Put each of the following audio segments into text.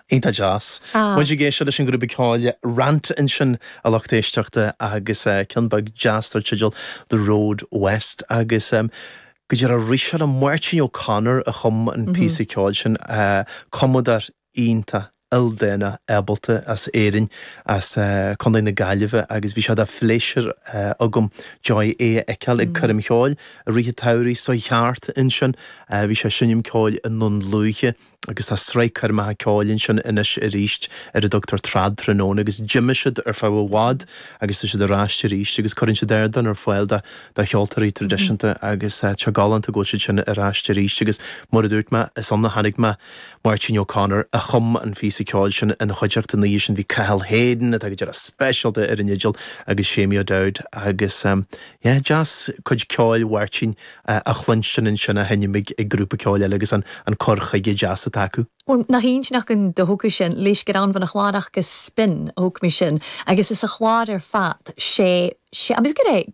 Iontach deas. Muid ag éisteacht leis an ghrúpa ceoil Rant ansin a lucht éisteachta agus ceann beag deas dar teideal The Road West agus go díreach arís tharla Máirtín O'Connor a chum an píosa ceoil sin, cumadóir iontach ildánach ábalta as Éirinn, as Contae na Gaillimhe agus bhí sé de phléisiúr agam, Joy, é a fheiceáil ag coirm cheoil i rith an tsamhraidh seo thart ansin. Bhí sé ag seinm ceoil i nDún Lúiche agus tá sraith coirmeacha ceoil ansin anois arís ar a dtugtar Trad Tráthnóna agus d'imigh siad ar feadh i bhfad agus tá siad ar ais arís agus cuireann siad ardán ar fáil do cheoltóirí traidisiúnta agus tá sé galánta go bhfuil siad sin ar ais arís agus mar a dúirt mé, is ann a chonaic mé. Máirtín O'Connor a chum an phíosa ceoil sin ina chuideachta an oíche sin bhí Cathal Hayden atá go díreach speisialta ar an fhidil agus Seamie O'Dowd agus yeah deas cuid ceoil Mháirtín a chluinstin ansin á sheinm ag grúpa ceoil eile agus an cur chuige deas atá acu. Bhuel, nach aoibhinn an dóchas sin, Laois Grán Mhná Chlárach agus Spin a thug mé sin agus is a chlár ar fad, sé, sé, agus go raibh,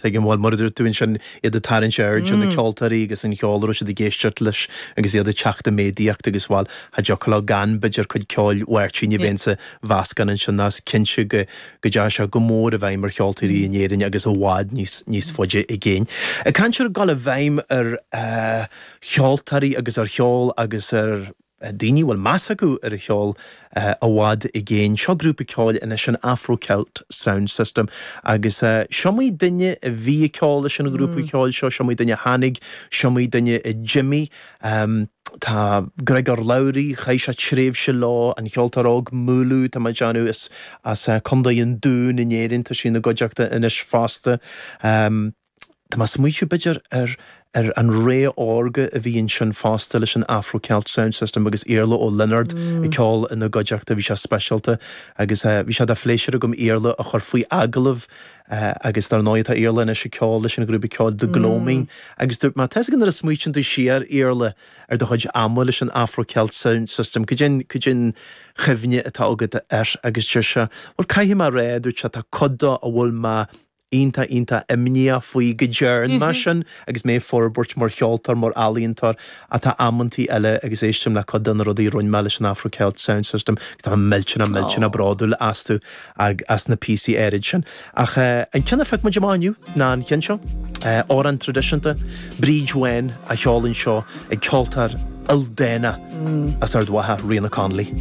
Tuigim, bhuel mar a dúirt tú ansin iad ag tarraingt aird ar na ceoltóirí agus an cheol a raibh siad ag éisteacht leis agus iad ag teacht i méadaíocht agus, bhuel, cha dtiocfadh leo gan, b'fhéidir, cuid ceoil Mháirtín a bheith insa mheascán ansin nó is cinnte go dteachaidh sé go mór i bhfeidhm ar cheoltóirí in Éirinn agus i bhfad níos faide i gcéin. Ag caint ar dhul i bhfeidhm ar cheoltóirí agus ar cheol agus ar. daoine a bhfuil meas acu ar an cheol i bhfad i gcéin. Seo grúpa ceoil anois, an Afro Celt Sound System agus is iomaí duine a bhí ag ceol leis an ghrúpa ceoil seo, is iomaí duine a tháinig, is iomaí duine a d'imigh. Tá Griogair Labhruidh, chaith sé tréimhse leo, an cheoltóir óg Múlú, tá mé ag déanamh, as Condae an Dún in Éirinn, tá sí ina gcuideachta anois fosta. Tá mé ag smaoitiú, b'fhéidir, ar ar an ré órga a bhí ansin fosta leis an Afro Celt Sound System agus Iarla Ó Lionáird ag ceol ina gcuideachta. Bhí sé speisialta agus bhí sé de phléisiúr agam Iarla a chur faoi agallamh agus dar ndóigh tá Iarla anois ag ceol leis an ghrúpa ceoil The Gloaming agus dúirt mé, tá 'fhios a'd nuair a smaoitíonn tú siar, Iarla, ar do chuid ama leis an Afro Celt Sound System, cad é an, cad é an chuimhne atá agat air agus deir sé, bhuel, caithfidh mé a rá, dúirt sé, tá cuid de a bhfuil mé iontach iontach imníoch faoi go dtearn mé sin agus mé ag forbairt mar cheoltóir, mar ealaíontóir ach tá amantaí eile agus éistim le cuid de na rudaí a rinn mé leis an Afro Celt Sound System agus tá mé millteanach millteanach bródúil astu agus as na píosaí áirid sin. Ach an ceann a phioc muid amach inniu ná an ceann seo, amhrán traidisiúnta, Bríd Bhán á cheol anseo ag ceoltóir ildánach as Ard Mhacha, Ríoghnach Connolly.